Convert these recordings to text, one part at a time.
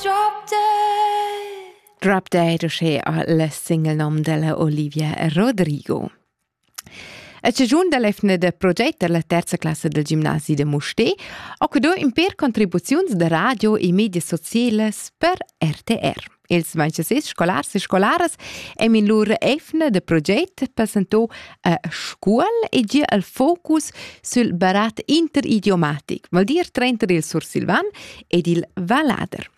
Drop dead! Drop dead uschè a la single nom della Olivia Rodrigo. A stagiun da l'efna da proget da la terza classa del gimnasi de Mustè ho que do in per contribuziuns da radio e media socielas per RTR. Ils manchesets scolars e scolaras hem in lur efna da proget presentò a scuol e gia al focus sül barat interidiomatic, vol dir trenter il sursilvan ed il Valader.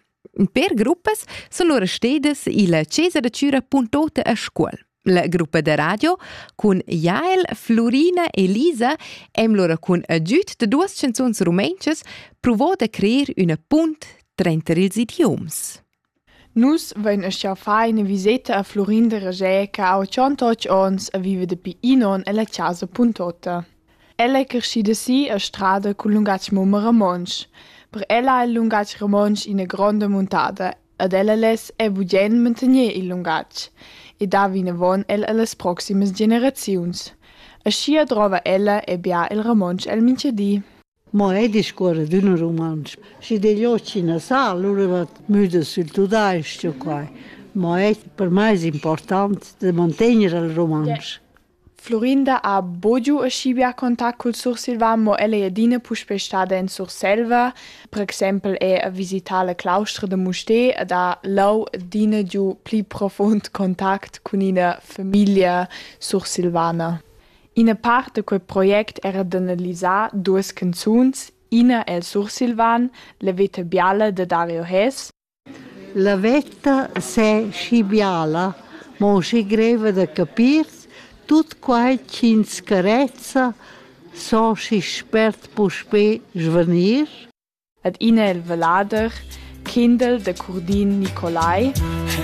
Per gruppas sono loro stedes il Cesa da Cura Puntota a Scuol. La gruppa de radio cun Jael, Florina e Lisa em lora cun agüt de duas canzuns rumentschas provò de creer üna punt tranter ils idioms. Nus vein aschia far ina viseta a Flurin da Ražè che ha tschontoc onns e viva dapi in onn ella casa Puntotta. Ella è creschida si a Strada cul lungatg mumma romontsch. Per ella ha il lungatg romontsch ina gronda muntada ed ella less è bugen mantegner il lungatg e dar vinavon el allas proximas generaziuns. Aschia drova ella e bia il romontsch el mintgadi. Mo ei discuora d'ün rumantsch. Schi digl ot chi na sa, alura va müda sül tudais-ch u quai. Mo ei per mei es important da mantegner il rumantsch. Florinda ha bugiu e schibeà contact cul Sursilvan, mo ella ei adina puspei stada in Surselva. Per exempel è a visitar la claustra da Mustér ed ha leu adina giu pli profund contact cun ina famiglia sursilvana. Ina part da quei project era d'analisar duas canzuns, ina el sursilvan, La veta biala da Dario Hess. La veta se schi biala, mo schi greva da capir, tut quai ch'ins carezza, so schi spert puspè svanir? Ad ina el vallader, Kindel da Curdin Nicolai. Hey.